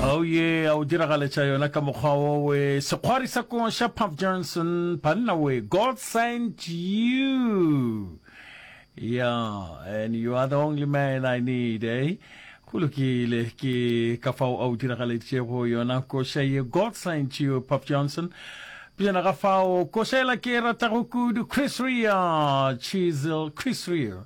Oh yeah, a o diragaletša yona ka mokgwa wo we sekgwari sa ko sha Puff Johnson banna we God sent you yeah and you are the only man I need eh go lokile ke ka fao a o diragaleditšego yona koša ye God sent you Puff Johnson pejana ga fao koša ela ke e ratago kudu Chris Rea Chisel Chris Rea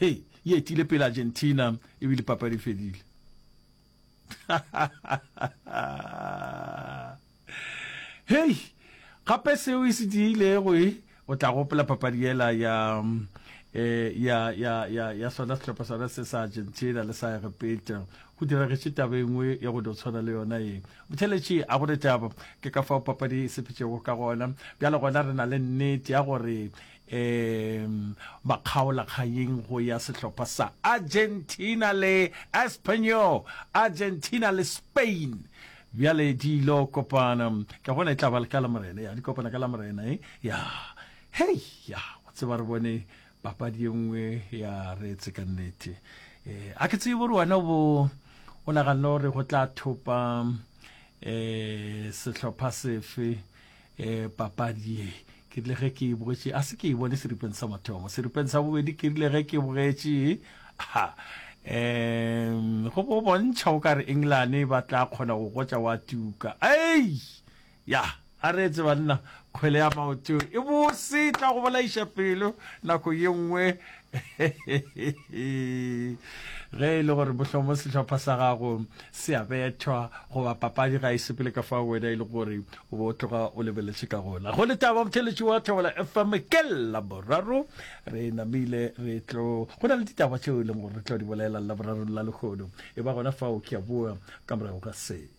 Hey, e etile pele Argentina ebile papadi fedile. hey, gape seo e se diilego e o tla gopola papadi yela ya eh ya ya ya ya sona sehlopha sona se sa Argentina le sa repeta go diragetše taba engwe ya go tshwana le yona e botheletše a gore taba ke ka fao papadi e sephetšego ka gona bjale gona re na le nnete ya gore e ba kgaola kganyeng go ya sehlopha sa Argentina le Espanyol. Argentina le Spain bjale di lo kopana ke bona e tla ba ka lamorena ya di kopana ka lamorena e ya hei ya o tseba re bone papadi ye nngwe ya retse ka nnete um a ke tsebe gore wena bo o naganne gore go tla thopa um sehlopha sefe um papadi ye ke rile ge ke e bogetše a se ke e bone seripeng sa mathomo seripeng sa bobedi ke rile ge ke bogetše um go bo bontšha o ka re england e ba tla kgona go gotša wa tuka ei ya a re etse banna kgwele ya maoto e bose tla go bolaiša pelo nako ye nngwe ge e le gore bohlomo sehlopha sa gago se a bethwa goba papadi ga e sepele ka fa wena e le gore o bo o tloga o lebeletše ka gona go le taba motheletši wa thobela fm ke laboraro re namile re tlo go na le ditaba tšeo e leng gore re tlo di bolela laborarong la lekgono e ba gona fao ke a boa ka morago ga se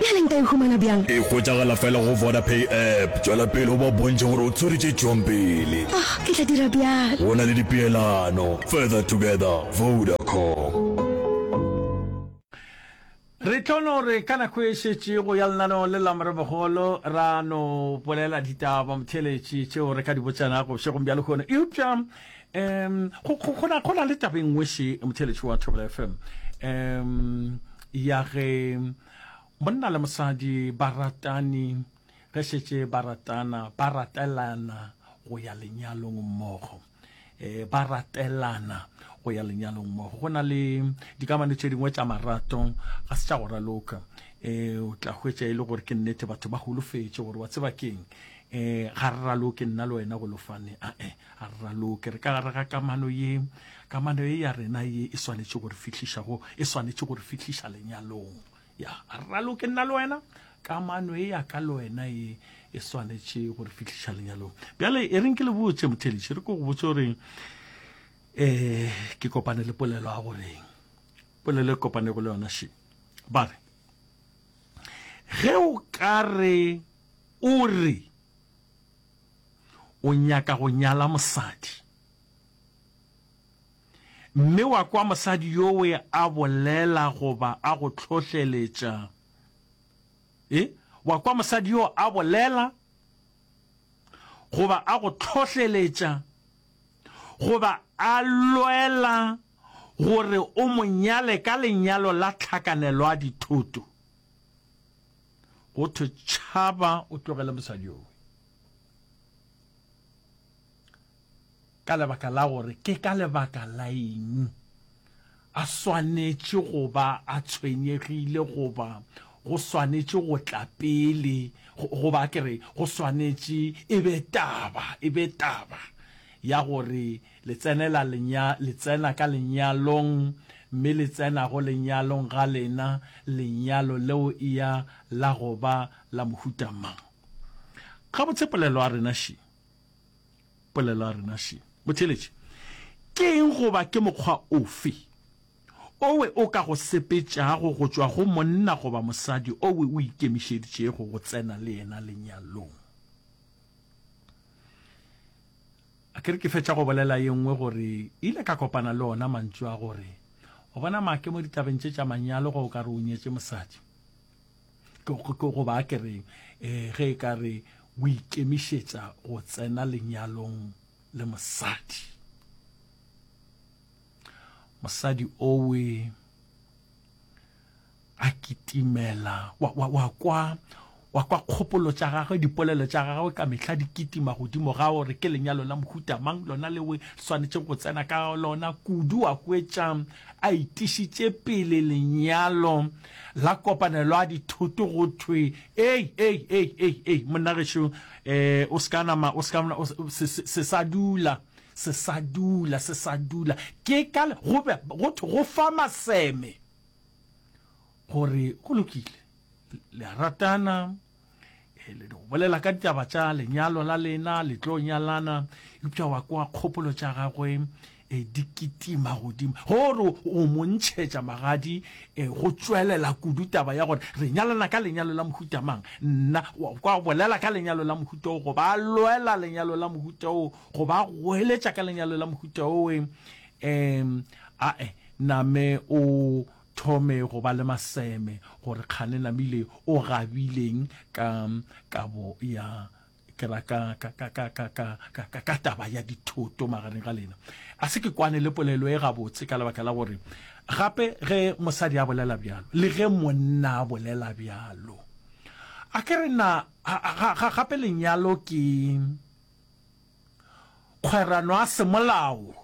Bjale nka e humana bjang? E hwetšagala fela go Vodapay app. Tšwela pele o ba bontšhe gore o tswere tše tšwang pele. Oh, ke tla dira bjalo. Go na le dipeelano. Further together, Vodacom. Re tlo no re ka nako e šetše go ya lenaneo le la morebogolo ra no bolela ditaba motheeletši tšeo re ka di botšanago bošegong bja lehono eupša Um go go go na go na le taba e nngwe she motheletši wa Thobela FM um ya ge monna le mosadi ba ratane ge šetše ba ratana ba ratelana go ya lenyalong mmogo eh ba ratelana go ya lenyalong mmogo go na le dikamano tše dingwe tša marato ga se tša go raloka eh o tla hwetša e le gore ke nnete batho ba holofetše gore wa tseba keng eh ga re raloke nna le wena go lofane a eh A re raloke re ka gare ga kamano ye. Kamano ye ya rena ye e swanetše go re fihliša go, e swanetše go re fihliša lenyalong. Ya, a re raloke nna le wena. Kamano ye ya ka le wena ye e swanetše go re fihliša lenyalong. Bjale e reng ke le botše motheletši, re ko go botše gore eh ke kopane le polelo ya goreng polelo e kopanego le yona she ba re ge o ka re o re o nyaka go nyala mosadi. Mme wa kwa mosadi yowe a bolela goba a go tlhohleletša, e, wa kwa mosadi yo a bolela goba a go tlhohleletša goba a lwela gore o mo nyale ka lenyalo la tlhakanelo a dithoto. go thwe tšhaba o tlogele mosadi yowe ka lebaka la gore ke ka lebaka la eng a swanetše go ba a tshwenyegile goba go swanetše go tla pele goba ke re go swanetše e be taba e be taba ya gore Le tsenela lenya, le tsena ka lenyalong, mme le tsena go lenyalong ga lena, lenyalo leo ea la go ba la mohuta mang? Gabotse polelo a rena še. Polelo a rena še. Motheeletši, ke eng goba ke mokgwa ofe owe o ka go sepetšago go tšwa go monna goba mosadi owe o ikemišeditšego go tsena le yena lenyalong? A ke re ke fetša go bolela ye nngwe gore ile ka kopana le ona mantšu a gore, O bona, Make, mo ditabeng tše tša manyalo ge o ka re o nyetše mosadi, ke, ke, goba a ke re, e, ge e ka re o ikemišetša go tsena lenyalong le mosadi, mosadi owe, a kitimela, wa, wa, wa kwa, wa kwa kgopolo tša gagwe, dipolelo tša gagwe ka mehla di kitima godimo ga gore ke lenyalo la mohuta mang lona leo e swanetšego go tsena ka lona kudu, a hwetša a itišitše pele lenyalo la kopanelo a dithoto go thwe, Ei, ei, ei, ei, ei, monna gešo, eh, o se ka nama, o se ka, se, se, se sa dula, se sa dula, se sa dula, ke ka, go be, go thwe go fa maseme. gore go lokile le a ratana eh, le go bolela ka ditaba tša lenyalo la lena le tlo nyalana eupša wa kwa kgopolo tša gagwe um di kitima godimo gore o mo ntšhetša magadi um go tswelela kudu taba ya gore re nyalana ka lenyalo la mohuta mang nna wa kwa bolela ka lenyalo la mohuta o goba a lwela lenyalo la mohuta o goba a goeletša ka lenyalo la mohuta owe um ae Name o thome go ba le maseme gore kgane namile o gabileng ka kabo ya kera ka, ka, ka, ka, ka, ka, ka, ka, ka taba ya dithoto magareng ga lena. A se ke kwane le polelo e gabotse ka lebaka la gore gape ge mosadi a bolela bjalo le ge monna a bolela bjalo, a ke re na, ga, ga, ga, gape lenyalo ke kgwerano ya semolao.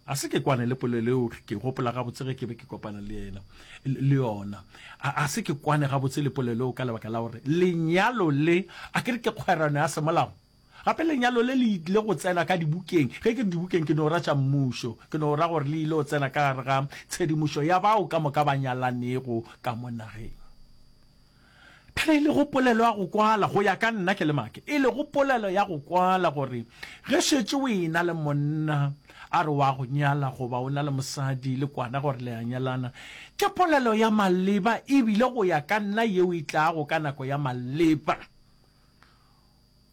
A se ke kwane le polelo eo ke gopola gabotse ge ke be ke kopana le yena le yona. A, a se ke kwane gabotse le polelo eo ka lebaka la gore lenyalo le a ke re ke kgwerano ya semolao. Gape lenyalo le le ile go tsena ka dibukeng. Ge ke re dibukeng ke no ra tša mmušo, ke no ra gore le ile go tsena ka gare ga tshedimošo ya bao ka moka ba nyalanego ka mo nageng. Ge e lego polelo ya go kwala, go ya ka nna ke le Make, e lego polelo ya go kwala gore ge šetše o e-na le monna, a re o a go nyala goba o na le mosadi le kwana gore le a nyalana, ke polelo ya maleba ebile go ya ka nna yeo e tlago ka nako ya maleba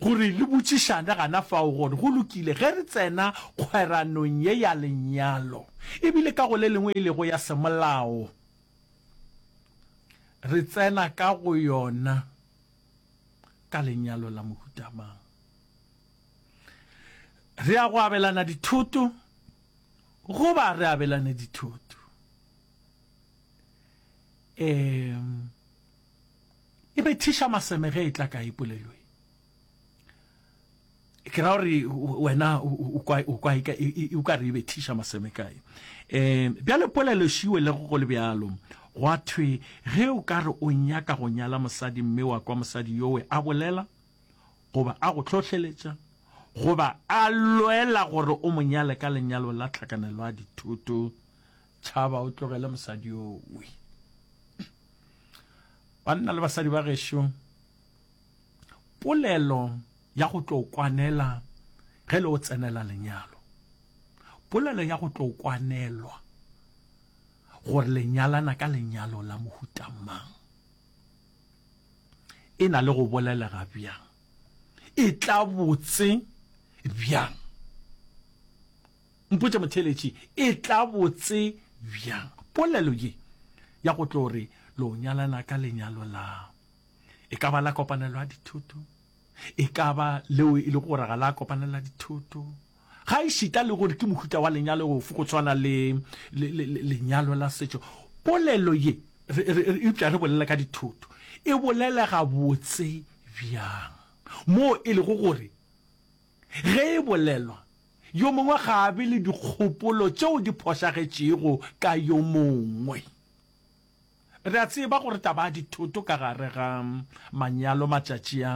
gore le botšišane gana fao gore go lokile ge re tsena kgweranong ye ya lenyalo ebile ka go le lengwe e lego ya semolao. Re tsena ka go yona ka lenyalo la mohuta mang? Re ya go abelana dithoto goba re abelane dithoto? E, e bethiša maseme ge e tla ka e polelo e. ke ra gore wena o kwa o ka re e bethiša maseme kae um bjale polelo šiwe le go le bjalo gwa thwe ge o ka re o nyaka go nyala mosadi mme wa kwa mosadi yowe a bolela goba a go tlhohleletša goba a lwela gore o mo nyale ka lenyalo la tlhakanelo a dithoto tšhaba o tlogele mosadi yowe banna le basadi ba gešo Polelo ya go tlo kwanela ge le o tsenela lenyalo. Polelo ya go tlo kwanelwa gore le nyalana ka lenyalo la mohuta mang. E na le go bolelega bjang? E tla botse bjang? Mpotše motheeletši, e tla botse bjang? Polelo ye ya go tlo re lo nyalana ka lenyalo la e ka ba la kopanelo ya dithoto e ka ba leo e le gore ga la kopanelo ya dithoto ga e šita le gore ke mohuta wa lenyalo ofe go tshwana le lenyalo la setšo polelo ye eupša re bolela ka dithoto e bolelega botse bjang moo e lego gore ge e bolelwa yo mongwe ga a be le dikgopolo tšeo di phošagetšego ka yo mongwe Re a tseba gore taba ya dithoto ka gare ga manyalo matšatši a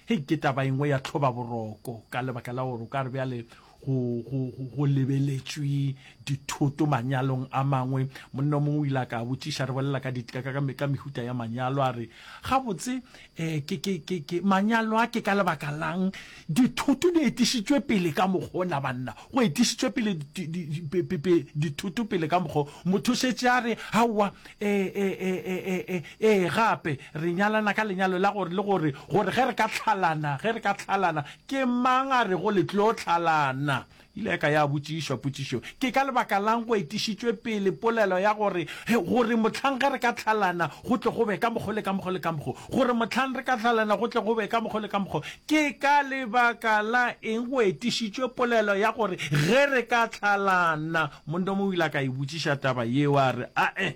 hei ke taba engwe ya tlhobaboroko ka lebaka la gore o ka re bjale go, go, go, go lebeletšwe dithoto manyalong a mangwe. Monna o mongwe o ile a ka botšiša, re bolela ka, di, ka, ka, ka mehuta ya manyalo, a re, Gabotse, E, ke, ke, ke, ke, manyalo a ke ka lebaka lang dithoto di etišitšwe pele ka mokgo na banna go etišitšwe pele dithoto pele ka mokgo motho šetše a re gaowa ee e, e, e, e, gape re nyalana ka lenyalo la gore le gore gore ge re ka tlhalana ge re ka tlhalana ke mang a re go le tlo tlhalana Ile ya ka ya botšišwa potšišo, Ke ka lebaka la'ng go etišitšwe pele polelo ya gore, gore mohlang ge re ka hlalana go tle go be ka mokgo le ka mokgo le ka mokgo? Gore mohlang re ka hlalana go tle go be ka mokgo le ka mokgo, ke ka lebaka la eng go etišitšwe polelo ya gore ge re ka hlalana? Mondome o ile a ka e botšiša taba yeo a re, A-e,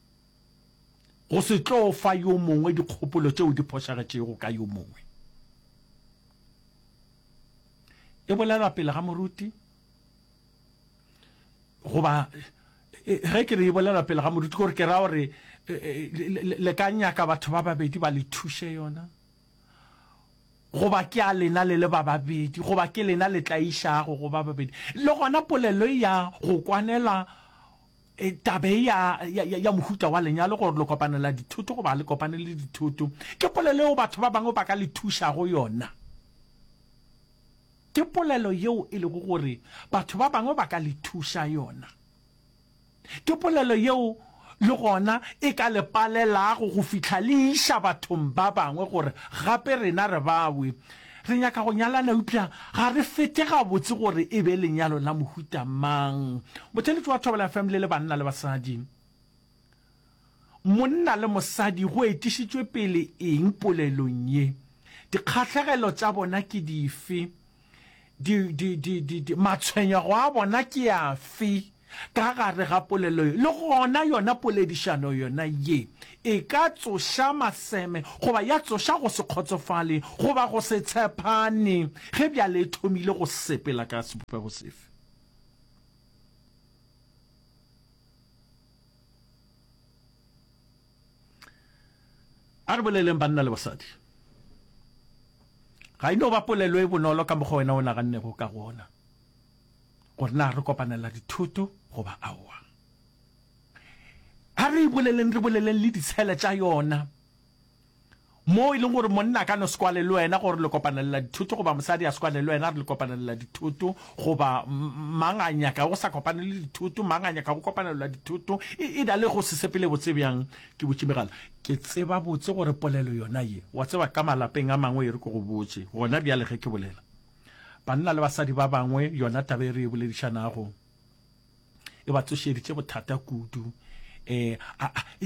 Go se tlo fa yo mongwe dikgopolo tšeo di phošagetšego ka yo mongwe. E bolelwa pele ga moruti, goba ge ke re e bolelwa pele ga moruti gore ke ra gore le ka nyaka batho ba babedi ba le thuše yona, goba ke a lena le le ba babedi, goba ke lena le tla išago go ba babedi. Le gona polelo e ya go kwanela E, taba e ya, ya, ya, ya mohuta wa lenyalo gore le kopanela dithoto goba le kopane le dithoto ke polelo eo batho ba bangwe ba ka le thušago yona ke polelo yeo e lego gore batho ba bangwe ba ka le thuša yona ke polelo yeo le gona e ka le palelago go fihla le iša bathong ba bangwe gore gape rena re bawe Re nyaka go nyalana eupša ga re fete gabotse gore e be lenyalo la mohuta mang. Motheeletši wa Thobela FM le le banna le basadi. Monna le mosadi go etišitšwe pele eng polelong ye? Dikgahlegelo tša bona ke dife? Di, di, di, di, di, matshwenyego a bona ke afe? Ka gare ga polelo ye, le gona yona poledišano yona ye, e ka tsoša maseme goba ya tsoša go se kgotsofale goba go se tshepane ge bjale e thomile go sepela ka sebopego sefe. A re boleleng banna le basadi. Ga e no ba polelo e bonolo ka mokgwa wena o nagannego ka gona. gore na re kopanela dithoto goba aowa. A re e boleleng, re boleleng le ditshele tša yona, moo e leng gore monna a ka no se kwale le wena gore le kopanelela dithoto goba mosadi a se kwale le wena re le kopanelela dithoto goba mang a nyaka go sa kopane le dithoto mang a nyaka go kopanelela dithoto e da le go se sepele botse bjang ke botse megala ke tseba botse gore polelo yona ye wa tseba ka malapeng a mangwe e re ko go botse gona bjale ge ke bolela Banna le basadi ba bangwe yona taba e re e boledišanago e ba tsošeditše bothata kudu. E, a, a, e,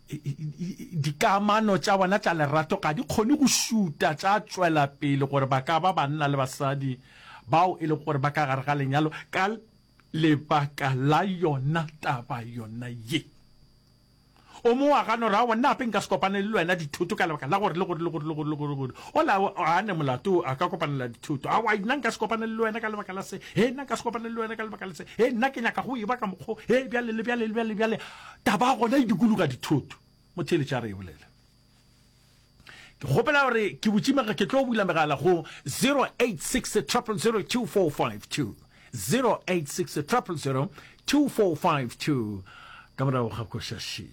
e, e, dikamano tša bona tša lerato ga di kgone go šuta tša tšwela pele gore ba ka ba banna le basadi bao e lego gore ba ka gare ga lenyalo ka lebaka la yona taba yona ye. O mo wa gano ra wa nna ape nka se kopane le lwena dithoto ka lebaka la gore le gore le gore le gore le gore gore o la a ne molato a ka kopanela dithoto a wa nna nka se kopane le lwena ka lebaka la se he nna nka se kopane le lwena ka lebaka la se he nna ke nyaka go e ba ka mokgo he bjale le bjale le bjale bjale taba gona e dikologa dithoto motheletša re e bolela ke kgopela gore ke botšimega ke tlo bula megala go 0860002452 0860002452 ka morago ga košaši